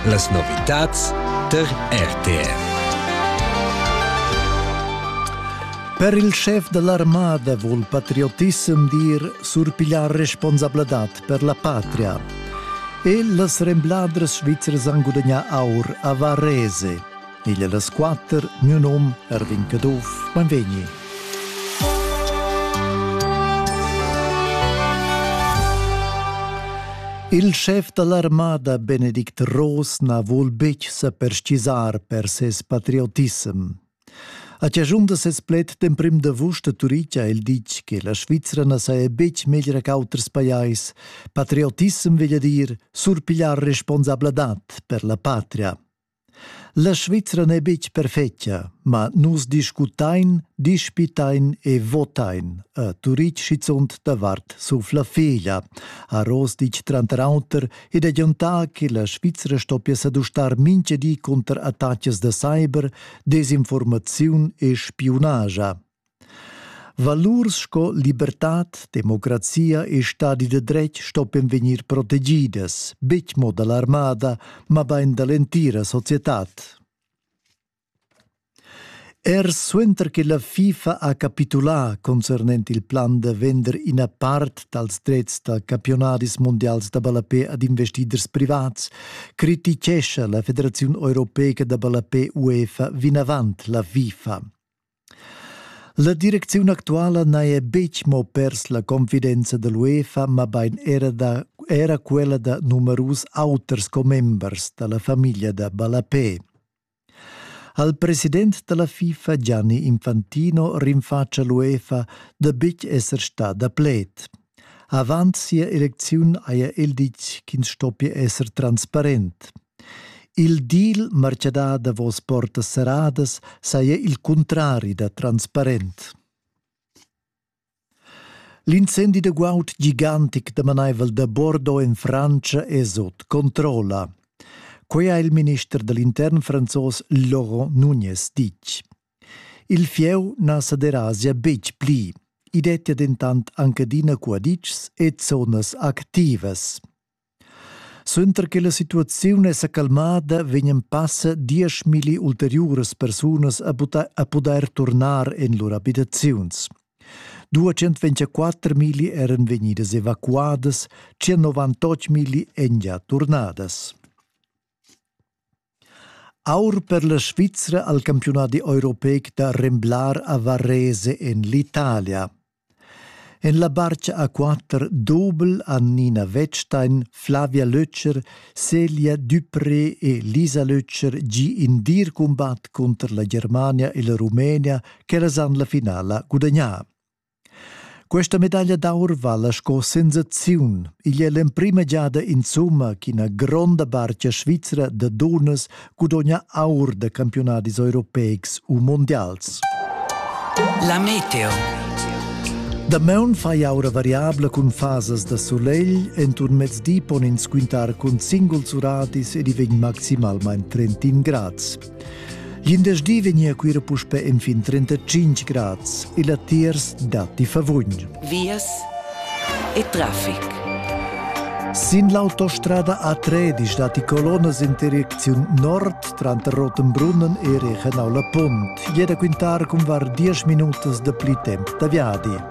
Las novitads tar RTV Per il schef da l'armada vul patriotissem dir surpigliar responsabladad per la patria. E las rembladras svizras han gudagnà aur a Varese. Igl las quater, miu num Ervin Caduff, benvegni. Il chef dall'armada Benedict Ross na vul betg se perschisar per ses patriotissem. A ciagiun da ses pled d'emprim d'avust a Turic ha el ditg che la Svizzera na saja betg meglra qu'auters pajais. Patriotissem veglia dir surpigliar responsabladad per la patria. La Svizra n'è betg perfetga, ma nus discutain, dispitain e votain, ha Turitg schizunt davart sur la feglia, ha Ross ditg tranter auter ed agiantà che la Svizra stoppia sa dustar mintga di cunter attacas da cyber, desinformaziun e spiunaja. Valurs sco libertad, democrazia e stadi da dretg stoppien vegnir protegidas, betg mo da l'armada, mabain da l'entira societad. Er suenter che la FIFA ha capitulà concernent il plan da vender ina part dals drets da campiunadis mundials da ballapè ad investiders privats, criticescha la Federaziun europeica da ballapè UEFA vinavant la FIFA. La direcziun actuala n'haja betg mo pers la confidenza da l'UEFA, mabain era, da, era quella da numerus auters commembers da la famiglia da Ballapè. Al president da la FIFA Gianni Infantino rinfatscha l'UEFA da betg esser stada pled. Avant sia elecziun haja el ditg ch'ins stoppia esser transparent. Il deal martgadà davos portas serradas saja il cuntrari da transparent. L'incendi da guaud gigantic damanaivel da Bordeaux en Frantscha è sut controlla. Quai ha il minister da l'intern franzos Laurent Nunes ditg. Il fieu na sa derasia betg pli. I dettia dentant anc adina cuaditschs e zonas activas. Suenter che la situaziun è sa calmada, vegnan passa dieschmilli ulteriuras persunas a pudair turnar en lur abitaziuns. 224 milli eran vegnidas evacuadas, 198 milli èn gia turnadas. Aur per la Svizra al campiunadi europeic da remblar a Varese en l'Italia. En la barcha a quatter dobel han Nina Wettstein, Flavia Lötscher, Celia Dupré e Lisa Lötscher gi in dir cumbat cunter la Germania e la Rumenia ch'ellas han la finala gudagnà. Questa medaglia d'aur vala sco sensaziun. Igl è l'emprima giada insumma ch'ina gronda barcha svizra da dunnas gudogna aur da campiunadis europeics u mondials. La meteo. Damaun fai aura variabla cun fasas da solegl, enturn mezdi pon ins quintar cun singuls uratis ed i vegn maximalmain 31 grads. Glindesdi vegnia Cuira puspe infin 35 grads. Il latiers datti favugn. Vias e traffic. Sin l'autostrada A3 datti colonas in direcziun nord tranter Rotenbrunnen e Rechenau la Punt. Jeda quintar cun var 10 minutas da pli temp da viadi.